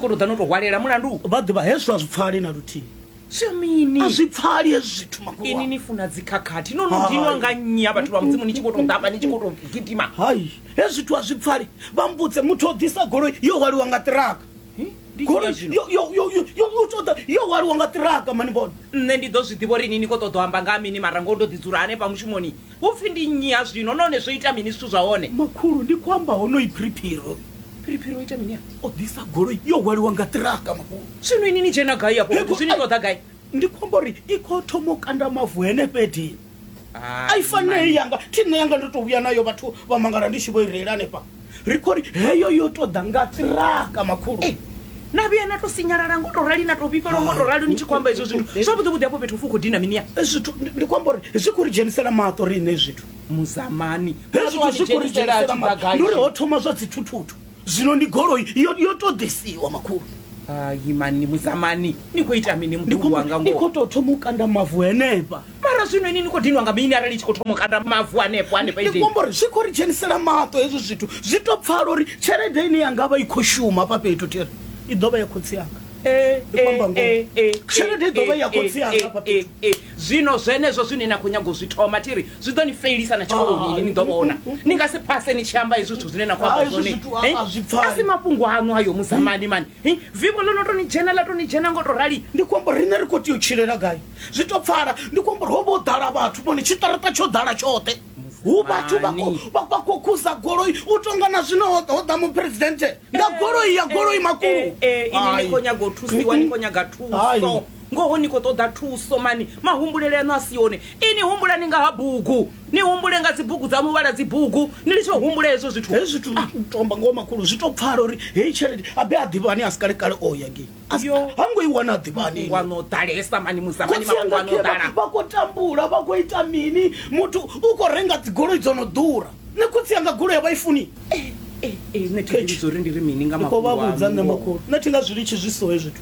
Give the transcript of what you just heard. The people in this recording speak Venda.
koro ḓa no to hwalela mulandu vha ḓivha hezwo a zwi pfali na luthihi mini a zwi pfali hezwi zwithu makulu ini ni funa dzikhakhathi no no dinwa nga nnyi ha vhathu vha mudzimu ni tshi khou tou ḓavha ni tshi khou tou gidima hai hezwi zwithu a zwi pfali vha mbudze muthu o ḓisa goloi yo hwaliwa nga ṱiraka golioyoyoyoyotoda yo hwaliwa nga ṱiraka mani vhone nṋe ndi ḓo zwi ḓivha uri ini ni khou ṱoḓo amba nga mini mara ngo ndo ḓi dzula hanefha mushumoni Hu pfi ndi nnyi ha zwino, nahone zwo ita mini zwithu zwa hone? Makhulu, ndi khou amba honoyi Phiriphiri. Phiriphiri o ita mini a? O ḓisa goloi yo hwaliwa nga ṱiraka, makhulu. Zwino ini ni dzhena gai afho fhethu? Zwino ni ṱoḓa gai? Ndi khou amba uri i khou thoma u kanda mavu henefha Edini. A i fanei yanga, thi nṋe yanga ndo tou vhuya nayo vhathu vha mangala ndi tshi vho i reila hanefha. ri khou ri heyo yo tou ḓa nga tiraka makhulu Eh, na vhuya na to sinyalala ngo to rali na to vhifhela ngo to rali ni tshi khou amba hezwo zwithu zwavhuḓi vhuḓi hafho fhethu fu khou dina mini ya Eh, zwithu ndi- ndi khou amba uri zwi khou ri dzhenisela maṱo riṋe zwithu muzamani Hezwi hezwi zwithu zwi khou ri dzhenisela dzhenisela maṱo tshidagadzhi. ndi uri ho thoma zwa dzithuthuthu zwino ndi goloi yo yo tou ḓisiwa makhulu hayi mani muzamani ni khou ita mini ndi mukulu wanga khou- ndi khou ngoho tou thoma u kanda mavu henefha mara zwino ini ni khou dinwa nga mini arali i tshi khou thoma u kanda mavu hanefho hanefha ndi khou amba uri zwi khou ri dzhenisela maṱo hezwo zwithu zwi to pfala uri tshelede ine yanga vha i khou shuma hafha fhethu tiri i ḓo vha ya khotsi yanga ndi khou amba ngoho tshelede i ḓo vha ya khotsi yanga hafha fhethu zwino zwenezwo zwine na khou nyaga u zwi thoma tiri zwi ḓo ni felisa na tshikoloni ini ni ḓo vhona ni nga si phase ni tshi amba hezwi zwithu zwine na khou amba zwone a si mafhungo aṋu ayo musamani mani Hi, vivho ḽo no tou ni dzhena ḽa tou ni dzhena ngo tou rali. Ndi khou amba uri riṋe ri khou tea u tshilela gai? Zwi tou pfala. Ndi khou amba uri ho vha ho ḓala vhathu, vhone tshiṱaraṱa tsho ḓala tshoṱhe. Hu vhathu vha khou vha vha khou khuza goloi u tou nga na zwino ho ḓa- ho ḓa muphuresidennde nga goloi ya goloi makulu. Eh, eh, eh, ini ni Hai. khou nyaga u thusiwa ni khou nyaga Hai. thuso ngoho ni khou ṱoḓa thuso mani mahumbulele aṋu a si one ini humbulani nga ha bugu ni humbule nga dzibugu dza muvhala dzibugu ni litshe u humbula hezwo zwithu hezwi zwithu zwi ah. tomba ngoho makhulu zwi to pfala uri heyi tshelede abe a ḓivhani a si kale kale o ya ngei ha ngo i wana a ḓivhani wano ḓalesa mani musamani mafhungo ano ḓala vha khou tambula vha khou ita mini muthu u khou renga dzigoloi dzo no ḓura ne khotsi yanga goloi ya vha i funi eh, eh, eh, nṋe thi nga zwi litshi zwi so hezwi zwithu